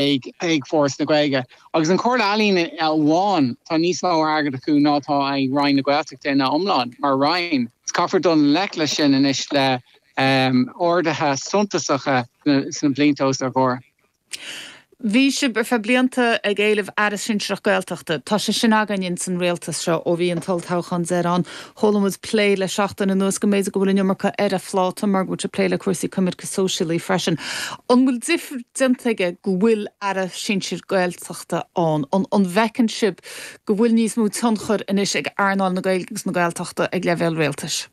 ag Foras na Gaeilge. Agus an Chomhairle Ealaíon amháin, tá níos mó airgid acu ná atá ag Roinn na Gaeltachta ina iomlán, mar Roinn. Caithfear dul i ngleic leis sin anois le arduithe suntasacha sna blianta os ár gcomhair. Bhí sibh ar feadh blianta ag éileamh Aire Sinsearach Gaeltachta. Tá sé sin againn in san Rialtas seo ó bhí an t-olltoghchán deireanach Chuala muid plé le seachtain anuas go mb'fhéidir go bhfuil an iomarca ar a' phláta mar go bhfuil sé ag plé le cúrsaí coimirce sóisialaí freisin. An bhfuil difear déanta aige go bhfuil Aire sinsir Gaeltachta ann? An an bhfeiceann sibh go bhfuil níos mó tionchair anois ag earnáil na Gaeilge agus na Gaeltachta ag leibhéal rialtais?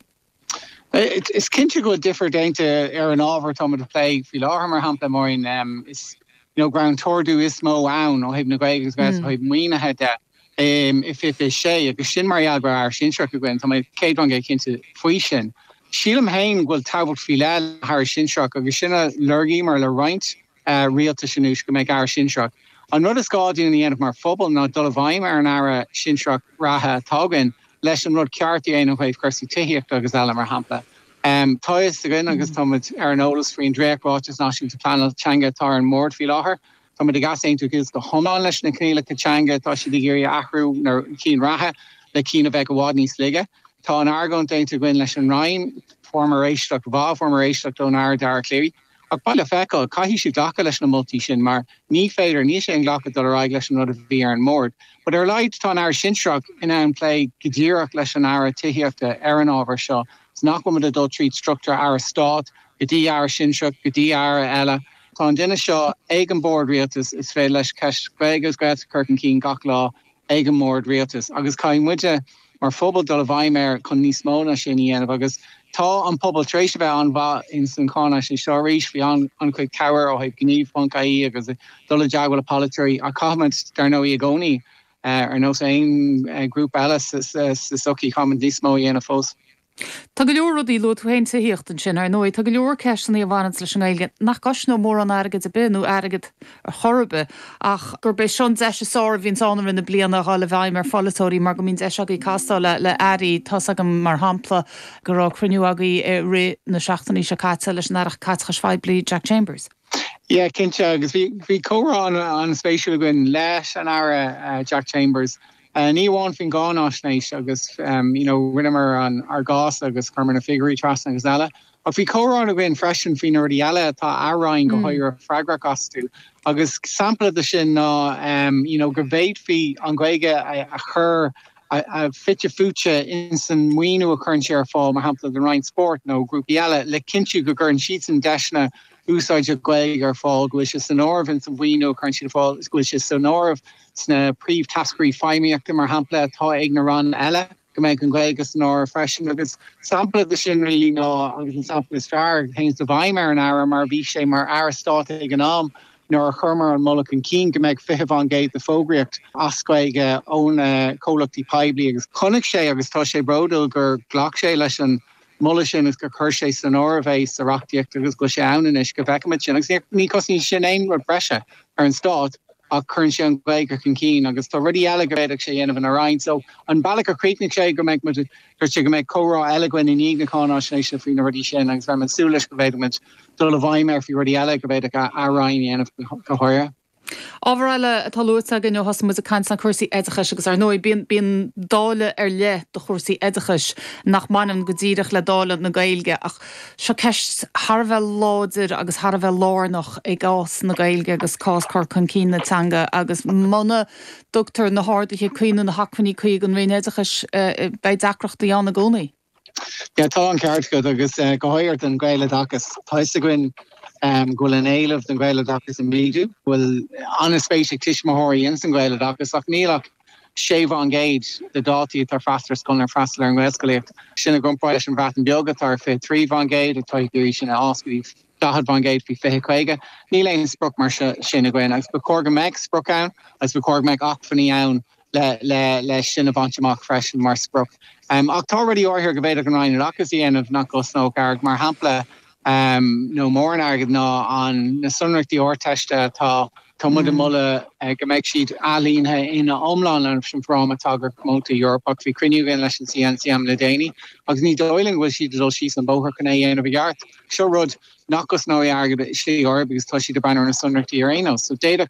Is cinnte go bhfuil difear déanta ar an ábhar atá muid a' plé faoi láthair mar shampla, Máirín, is, you know, go raibh an t-ardú is mó ann ó thaobh na Gaeilge agus ó thaobh maoinithe de. Féach agus sin mar gheall go raibh Aire sinsearach againn, tá mé céad faoin gcéad cinnte faoi sin. Sílim féin go bhfuil tábhacht faoi leith le hAire sinsearach agus sin a lorgaíomar le roinnt rialtais anuas, go mbeadh Aire sinsearach. An rud is gá dúinn a dhéanamh mar phobal ná dul i bhfeidhm ar an Aire sinsearach reatha atá againn leis an rud ceart a dhéanamh ó thaobh cúrsaí tithíochta agus eile, mar shampla. Tá a fhios againn agus táimid ar an eolas faoin dréacht-Ráiteas Náisiúnta Pleanála teanga atá ar an mbord faoi láthair, Tá muid ag easaontú leis go hiomlán leis na coinníollacha teanga, tá siad ag iarraidh athrú na cinn reatha le cinn a bheadh i bhfad níos laige. Tá an argóint déanta againn leis an Roinn, fuaireamar éisteacht mhaith, fuaireamar éisteacht ón Aire Dara Calleary, ach beidh le feiceáil, caithfidh siad glacadh leis na moltaí sin mar ní féidir, níl sé inghlactha dul ar aghaidh leis an rud a bhí ar an mbord. But ar a laghad tá an Aire sinsearach in ann plé go díreach leis an Aire Tithíochta ar an ábhar seo, 's nach bhfuimid ag dul tríd struchtúr Aire Stáit go dtí Aire Sinsearach go dtí Aire eile. Tá an duine seo ag an mBord Rialtais is féidir leis ceist Gaeilge agus Gaeltacht a chur chun cinn gach lá ag an mBord Rialtais agus caithfidh muide mar phobal dul i bhfeidhm air chun níos mó ná sin a dhéanamh agus tá an pobal tar éis a bheith an-mhaith ins an gcáinaisnéis seo arís bhí an-chuid cabhair ó thaobh gníomh ponc ie agus dul i dteagmhail le polaiteoirí ach caithfimid dar ndóigh i gcónaí ar nós aon ghrúpa eile sa tsochaí, caithfimid níos mó a dhéanamh fós. Tá go leor rudaí, luaigh tú féin tithíocht ansin, ar ndóigh, tá go leor ceisteanna a bhaineanns leis an nGaeilge nach gcosnódh mórán airgid ar bith, nó airgead ar chor ar bith, ach gurb é seo an deis is fearr a bhíonns ann i rith na bliana a dhul i bhfeidhm ar pholaiteoirí mar go mbíonn deis agaibh castáil le airí. Tá's agam, mar shampla, go raibh cruinniú agaibh i rith na seachtaine seo caite leis an Aire Caiteachais Phoiblí, Jack Chambers. Yeah, cinnte, agus bhí comhrá an-spéisiúil againn leis an Aire Jack Chambers, ní amháin faoin gcáinaisnéis agus you know rinneamar ár gcás agus chuireamar na figiúirí trasna agus eile, ach bhí comhrá againn freisin faoi na rudaí eile atá a Roinn go háirithe freagrach astu agus sampla de sin ná you know go bhféadfaí an Ghaeilge a chur a bheith fite fuaite ins an maoiniú a chuireann sé ar fáil, mar shampla, don Roinn Spóirt nó grúpaí eile, le cinntiú go gcuireann siadsan deiseanna úsáide Gaeilge ar fáil, go bhfuil sé san áireamh ins an mhaoiniú a chuireann siad ar fáil, go bhfuil sé san áireamh sna príomhtháscairí feidhmíochta, mar shampla, atá ag na ranna eile, go mbeidh an Ghaeilge san áireamh freisin. Agus sampla de sin, really, ná, agus sampla is fearr a théann i bhfeidhm ar an Aire, mar bhí sé mar Aire Stáit ag an am, nuair a chuireamar an moladh chun cinn go mbeadh 20 fán gcéad de fógraíocht as Gaeilge ó na comhlachtaí poiblí agus chonaic sé agus tá sé bródúil gur ghlac sé leis an moladh sin agus gur chuir sé san áireamh é sa reachtaíocht agus go bhfuil sé ann anois go bhfeicimid sin agus ní chosnaíonn sin aon rud breise ar an stát ach cuireann sé an Ghaeilge chun cinn agus tá rudaí eile go bhféadfadh sé dhéanamh ina roinn so an bealach a chríochnaigh sé go mbeidh muid dúirt sé go mbeidh comhrá eile againn i ndiaidh na cáináisnéise faoi na rudaí sin agus beimid ag súil leis go bhféadfaimid dul i bhfeidhm air faoi rudaí eile go bhféadfadh a Roinn a dhéanamh go háirithe. Ábhar eile atá luaite againn ó thosaigh muid ag caint ná cúrsaí oideachais agus, ar ndóigh, bíonn dáileadh ar leith do chúrsaí oideachais nach mbaineann go díreach le dáileadh na Gaeilge ach seo ceist thar a bheith láidir agus thar a bheith lárnach i gcás na Gaeilge agus cás cur chun cinn na teanga agus muna dtugtar na harduithe cuí nó na hacmhainní cuí ag an Roinn Oideachais beidh deacrachtaí ann i gcónaí. Sea, tá an ceart agat agus go háirithe don Ghaeloideachas. Tá a fhios againn go bhfuil an éileamh don Ghaeloideachas ag méadú, go bhfuil an-spéis ag tuismitheoirí ins an Ghaeloideachas ach níl ach 6% de dhaltaí atá ag freastal ar scoil ná ag freastal ar an nGaelscolaíocht. Sin i gcomparáid leis an Bhreatain Bheag atá ar 23% atá ag iarraidh sin a fhás go dtí 40% faoi 2050. Níl aon sprioc mar sin againn agus ba chóir go mbeadh sprioc ann agus ba chóir go mbeadh acmhainní ann leis sin a bhaint amach freisin mar sprioc. Ach tá rudaí áirithe go bhféadfadh an Roinn Oideachais a dhéanamh nach gcosnódh airgead, mar shampla, nó mórán airgid ná na sonraíochtaí Ardteiste atá. Tá muid ag moladh go mbeidh siad ailínithe ina iomlán leis an bhFráma Tagartha Comónta Eorpach. Bhí cruinniú againn leis an gCNCM le déanaí agus ní dóigh linn go bhfuil siad ag dul síos an bóthar chun é a dhéanamh i gceart. Seo rud nach gcosnóidh airgead i slí ar bith agus tá siad ag breathnú ar na sonraíochtaí ar aon nós. So d'fhéadfadh an.